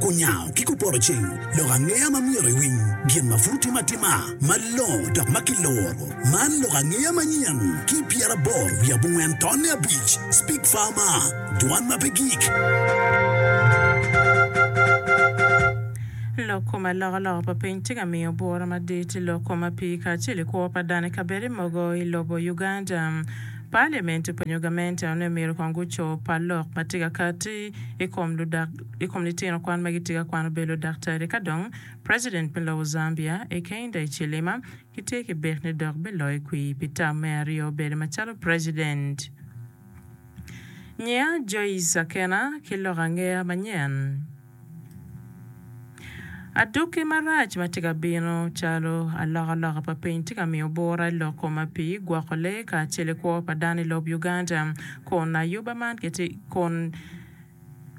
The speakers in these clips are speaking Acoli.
Kunyango ki kuporo ceng lok angeya ma myero iwiny gin ma pud tye atima malongo dok ma kiloro. Man lok angeya manyen ki pyeraboro wiye abongwen tonne abic, Speak Farmer, Dwan ma pe gik. Lok kom alokaloka pa piny tye ka miyo bwura madit i lok kom ma pii kacel i kwo pa dano i kabedo mogo i lobo Uganda. Paliament pa nyogamente onongo myero kong guco pa lok ma tye ka kati i kom ludak i kom litino kwan ma gitye ka kwano bedo ludaktari ka dong President me lobo Zambia Hakainde Hichilema gitye ki bik ni dok biloyo kwir pi tam me aryo bedo macalo President nyiya Joyce Akena ki lok angeya manyen. Adwogi marac ma tye ka bino calo alokaloka pa piny tye ka miyo bura i lok kome pi gwoko lee kacel ki kwo pa dano i lob Uganda kun ayuba man kun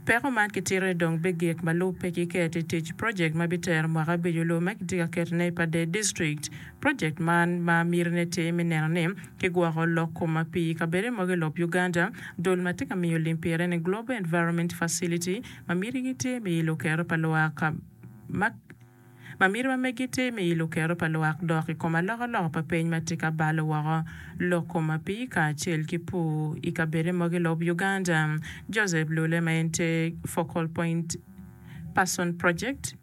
peko man kitito ni dong bigik ma lub pe kiketo i tic project ma bitero mwaka abic-cu lub ma kitye ka ketone i Padee district project man ma mitine tye me neno ni kigwoko lok kom pi kabedo mogo i lob Uganda dul ma tye ka miyo lim pire ni Global Environment Facility Ma mitigi tye me ilo kero pa lwak ma Ma miti ma megi tye me ilo kero pa lwak dok i kom alokaloka pa peny ma tye ka balo woko lok kom apii kacel ki pur i kabedde mogo i lob Uganda. Joseph Lule ma en tye Focal Point Person Project,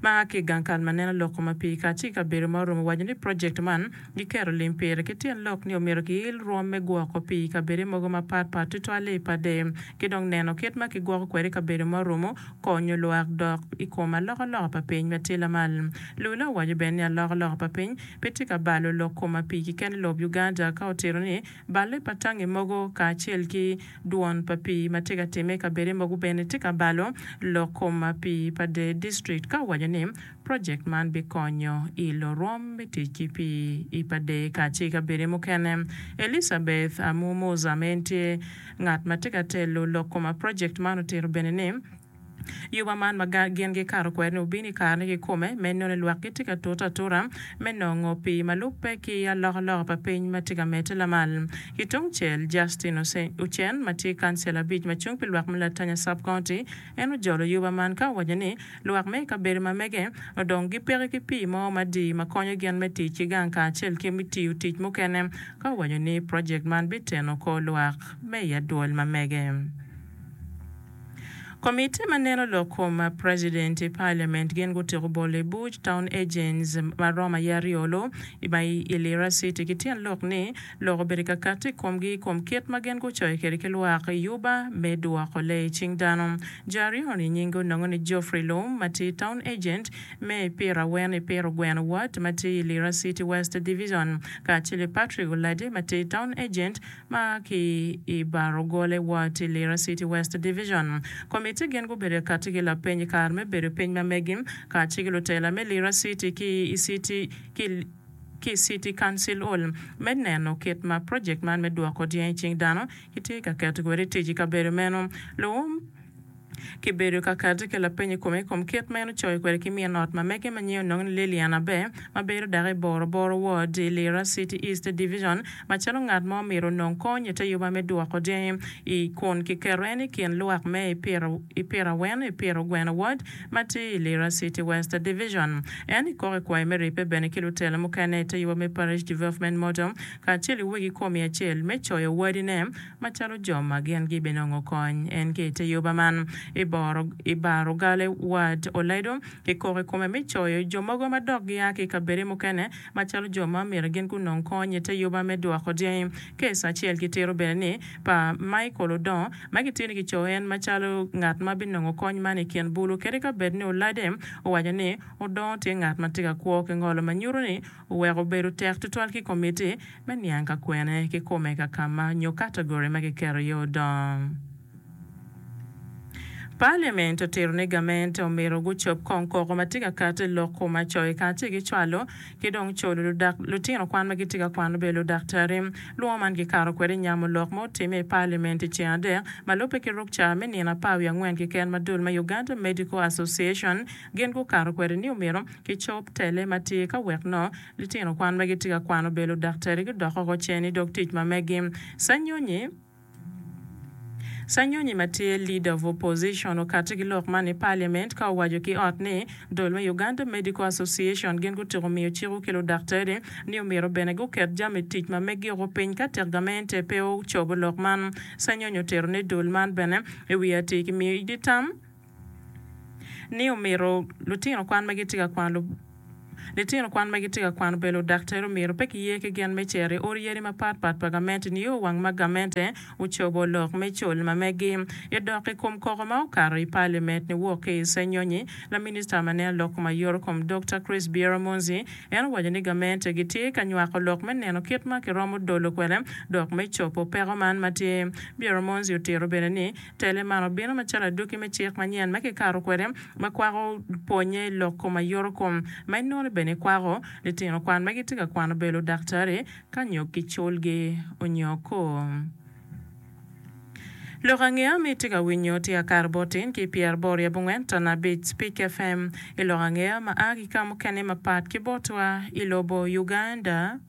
ma a ki i gang kal ma neno lok kom api kacel ki kabedo ma orumo owaco ni project man giketo lim pire ki tyen lok ni omyero kiil rwom me gwoko pi i kabede mogo ma pat pat tutwalle i pade ki dong neno kit ma ki gwoko kwede kabedo ma orumo konyo lwak dok i kom aloka loka pa piny ma tye lamal. Lula owaco bene ni aloka loka pa piny pe tye ka balo lok kom api keken i lob Uganda ka otito ni balle pa tangi mogo kacel ki Dwon pa pii ma tye ka timme i kabedde mogo bene tye ka balo lok kom pii pa Dee District ka owaco ni project man bikonyo i lorwom me tic ki pii i pa Dee kacel ki kabedde mukene. Elizabeth Amu Muza ma en tye ngat ma tye ka telo lok kom project man otito bene ni, Yuba man ma gin gikato kwede-ni obino i karene kikome me nongo ni lwak gitye ka tute atuta me nongo pii ma lubbe ki alokaloka pa piny ma tye ka medde lamal. Ki tungcel, Justin Ocen ma tye kancela abic ma cung pi lwak me Latanya Sub-County, en ojolo yuba man ka owaco ni lwak me i kabedo ma mege odong gipeke ki pii mo madii ma konyo gin me tic ki gang kacel ki me tiyo tic mukene ka owaco ni project man biteno kor lwak me i adwol ma mege. Komiti ma neno lok kom president i parliament gin gutiko bolo i buc town agents ma romo aye aryo lo i ma i Lira city ki tyen lok ni lok obedo kakati i komgi i kom kit ma gin gucoyo kwede ki lwak i yuba me dwoko lee i cing dano. Jo aryo ni nyingi onongo ni Geoffrey Loum ma tye town agent me i pira awen i pira ogweno ward ma tye i Lira city west division kacel ki Patrick Oladi ma tye town agent Ma ki i bar ogole wa ti Lira City West Division. Komitti gin gubedo i katti ki lapeny i kare me bedo piny ma megi ka ci ki lutela me Lira City ki i city ki ki i City Council Hall me neno kit ma project man me dwoko dyang i cing dano ki tye ka keto kwede i tic i kabedo meno. Luwum. ki bedo ka kati ki lapeny i kome i kom kit ma en ocoyo kwede ki min ot ma mege ma nyinge onongo ni Lillian Aber, ma bedo dako i Boroboro Ward i Lira City East Division, macalo ngat ma omyero onong kony i te yubba me dwoko dyangi i kun kiketo en i kin lwak me i Piraweno i Piro Gweno Ward ma tye i Lira City West Division. En ikoko i kwayo me ribbe bene ki lutelo mukene i te yubba me Parish Development Model kacel ki wegi komi acel me coyo wadine Macalo jo ma gin gibenongo kony en ki i te yoba man, i bar ogale Ward oledo ki kok i kome me coyo jo mogo ma dok gia ki i kabedo mukene macalo jo ma myero gin gunong kony i te yoba me dwoko dyangi. Kes acel kitito bene ni pa Michael Odong ma gitye ni kicoyo en macalo ngat ma binongo kony man i kin bulu kadi ka bed ni olade owaco ni Odong tye ngat ma tye ka kwo ki ngolo ma nyuto ni Wek obedo tek tutwal ki komitti me niang ka kwene kikome ka kama nyo category ma kiketo iye odong. Parliament otito ni gament omito gucob kong koko ma tye ka kati i lok kuma coyi ka tye ki cwalo ki dong culu ludak lutino kwan ma gitye ka kwano bedo ludaktari. Lwongo man kikato kwede nyamo lok ma otimme i parliament i ceng adek ma lubbe ki rukca me nino apar wiye angwen keken ma dul me Uganda Medical Association Gin gukato kwede ni omyero kicob tele ma tye ka wek nongo litino kwan ma gitye ka kwano bedo ludaktari gudok oko cen i dog tic ma megi. Sanyonyi, Sanyonyi ma tye Leader of Opposition okatti ki lok man i Parliament ka owaco ki ot ni dol me Uganda Medical Association gin gutyeko miyo ciko ki ludaktari ni omyero bene guket jami tic ma megi oko piny ka tek gamente pe ocobo lok man. Sanyonyi otero ne dol man bene i wi atir ki miyo idi tam ni omito litino kwan ma gitye ka kwano litino kwan ma gitye ka kwano bedo ludaktere omyero pe kiye ki gen me cito i ot yadi mapat pat pa gamente nio wang ma gamente ocobo lok me col ma megi. I dok i kom koko ma okato i palimet niwok ki i Senyonyi, laminista ma neno lok kom aye Orukom Dokta Chris Bieromonzi en owaco ni gamente gitye ka nywako lok me neno kit ma kiromo dolo kwede dok me cobo peko man ma tye. Bieromonzi otito bene ni, Tele man obino macalo adwoki me cik manyen ma kikato kwede ma kwako pwonye i lok kom aye oro kom ma inoni bene ikwako. Litino kwan ma gitye ka kwano bedo ludaktari ka nyog ki culgi onyo ko. Lok angeya ma itye ka winyo tye akato botin ki pyer aboro i abongwen tana abic Spik FM i lok angeya ma aa ki ka mukene mapat ki botwa i lobo Uganda.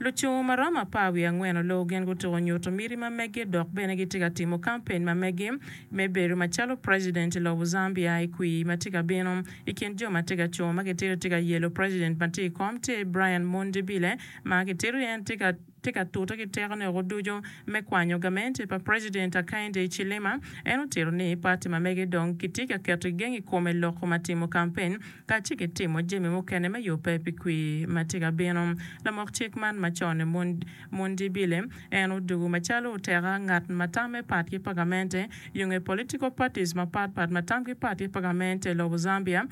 Lucung ma romo apar wiye angwen oloo gin gutuko nyuto miti ma meggi dok bene gitye ka timo kampen ma meggi me bedo macalo president i lobo Zambia i kwir ma tye ka bino. I kin jo ma tye ka cung ma kitito tye ka yelo president ma tye i kom tye Brian Mundibile ma kitito ni en tye ka tye ka tute ki tekone woko ducu me kwanyo gamente pa President Hakainde Hichilema. En otito ni parti ma mege dong kitye ka keto i geng i kome loko ma timo kampen kacel ki timo jami mukene me yubbe pi kwir ma tye ka bino. Lamok cik man ma cone Mundibile en odugu macalo oteka ngat ma tamme pat ki pa gamente yunge political parties mapat pat ma tamgi pat ki pa gamente lobo Zambia,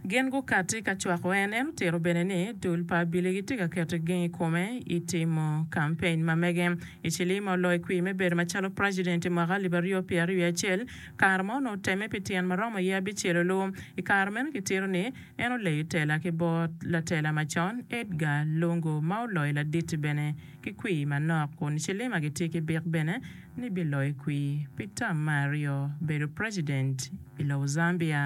Gin gukatti ka cwako en. En otito bene ni dul pa abili gitye ka keto geng i kome i timo kampeny ma mege. Hichilima oloyo kwir me bedo macalo president i mwaka alip aryo pyera ryo acel. Kare mo onongo otemme pi tyen ma romo ye abicel olu. I kare meno kitito ni en oleyo tela ki bot latela macon Edgar Lungu ma oloyo laditi bene. ki kwir manok kun Chilima gitye ki bik bene ni biloyo kwir pi tam me aryo bedo president i lobo Zambia.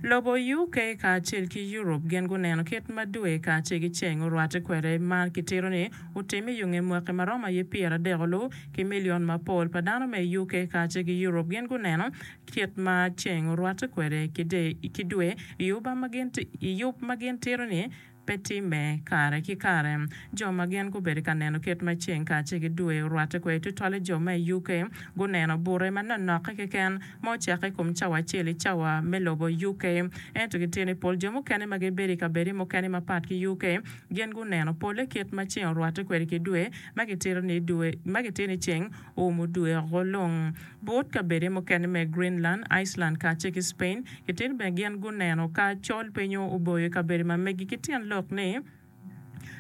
Lobo UK kacel ki Europe gin guneno kit ma dwe kacel ki ceng orwatte kwede ma kitito ni otim i yunge mwaki ma romo aye pyer adek olu ki milion mapol pa dano me i UK kacel ki Europe gin guneno kit ma ceng orwatte kwede ki dwe i yub ma gin tito ni Pe timme. Kare ki kare, jo ma gin gubedo ka neno kit ma ceng kacel ki dwe orwatte kwede tutwal i jo me UK, guneno bute manonokke keken ma ocako i kom cawa acel i cawa me lobo UK. Ento gitye ni pol jo mukene ma gibedo i kabedo mukene mapat ki UK gin guneno polle kit ma ceng orwatte kwede ki dwe, ma gitito ni dwe ma gitito ni ceng Um odweko long but kabede mukene me Greenland, Iceland kacel ki Spain. Kitito bene gin guneno ka col pe nyo oboyo kabedo ma megi ki tyen lok ni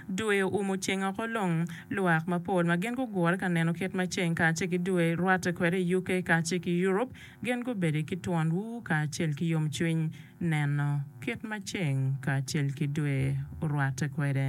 dwe um oceng oko long. Lwak mapol ma gin gugure ka neno kit ma ceng kacel ki dwe rwatte kwede i UK kacel ki Europe gin gubedo ki twon ur kacel ki yomcwiny neno kit ma ceng kacel ki dwe orwatte kwede.